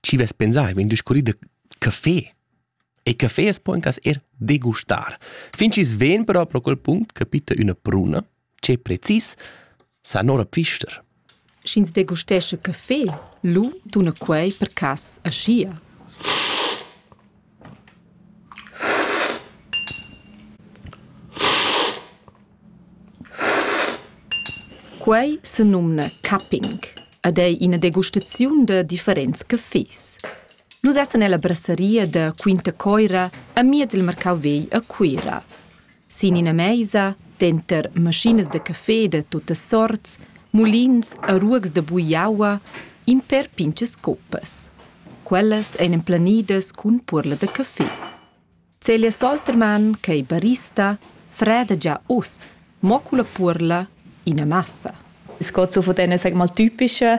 Chi vess pensà ei vegn discurrì da caffé. E caffé as po in cas er degustar. Fin chi's vegn però pro quel punct capita üna pruna, che precis sa nora pfister. Sch'ins degustesce caffé, lu tuna quei per cas aschia. Quei senumna cupping ed ei ina degustaziun da differents cafés. Nus essan ella brasseria da Quinta Coira amiez il marcau vegl a Cuira. Sin ina meisa, denter maschinas da café da tuttas sorts, mulins e ruogs da bugliaua, in per pintgas coppas. Quellas ein emplanidas cun puorla da café. Celia Soltermann, ch'ei barista, freda gia uss, mo culla puorla ina massa. Es geht so von denen, sag mal, typischen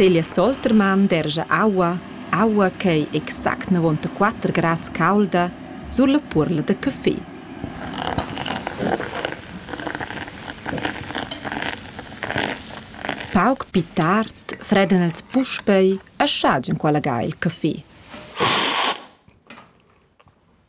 Celia Soltermann dergia aua, aua ch'ei exact navontaquater grads caulda sulla puorla da caffé. Pauc pli tard fredan els puspei a schagin quella ga il caffé.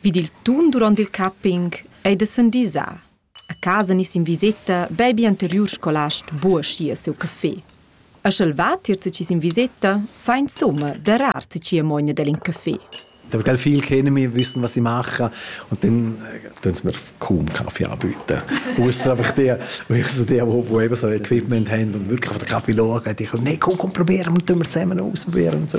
Vid il tun duront il capping ei da sendisar. A casa niss in viseta bebi anteriur scolast buoschia siu café. E sch'el va tier tgi sin viseta, fa insomma darar tgi mogna dallin café. Da gell viel können wir wissen, was ich mache. Und dann tun sie mir kaum Kaffee anbieten. Ausser einfach die, ausser die, die, die eben so Equipment haben und wirklich auf den Kaffee schauen. Die können, nein, komm, komm, probieren, und tun wir zusammen aus und probieren und so.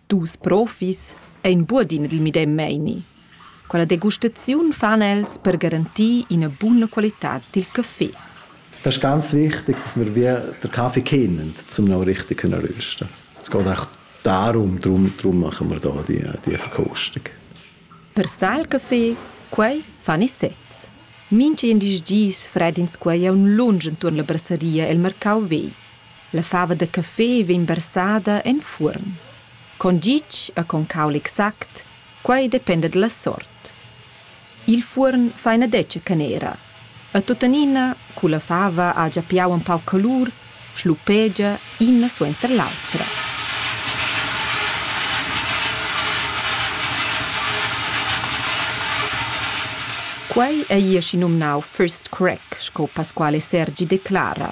Dus profis ein buodi nel medem meini. Quella degustaziun fan els per garantir ina buna qualitad dil caffè. Das ist ganz wichtig, dass wir wie den Kaffee kennen, um auch richtig können rösten. Es geht auch darum, darum, darum machen wir hier die Verkostung. Per sal café, quei fan ils sezs. Mintgin dis dis fred'ins quei aunc lunsch entuorn la brasseria el marcau vegl. La fava da café vegn versada en fuorn. Con gitg e con caul exact, quei dependa dalla sort. Il fuorn fa ina detga canera. E tuttenina, culla fava ha gia piau empau calur, schlupegia ina suenter l'autra. Quei ei aschi numnau first crack, sco Pasquale Sergi declara,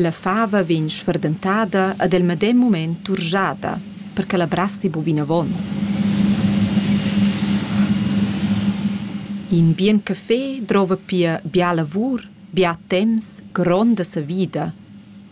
La fava vegn sferdentada ed el medem mument turschada, per che la brassi bu vinavon. In bien café drova pia bia lavur, bia temps, gronda savida.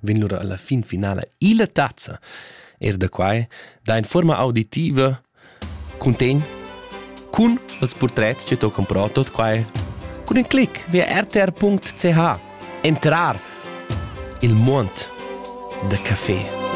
vegn lura alla fin finala illa tazza. Er da quai da in forma auditiva contegn cun els portrets che tocan protos quai cun in clic via rtr.ch entrar il mond da café.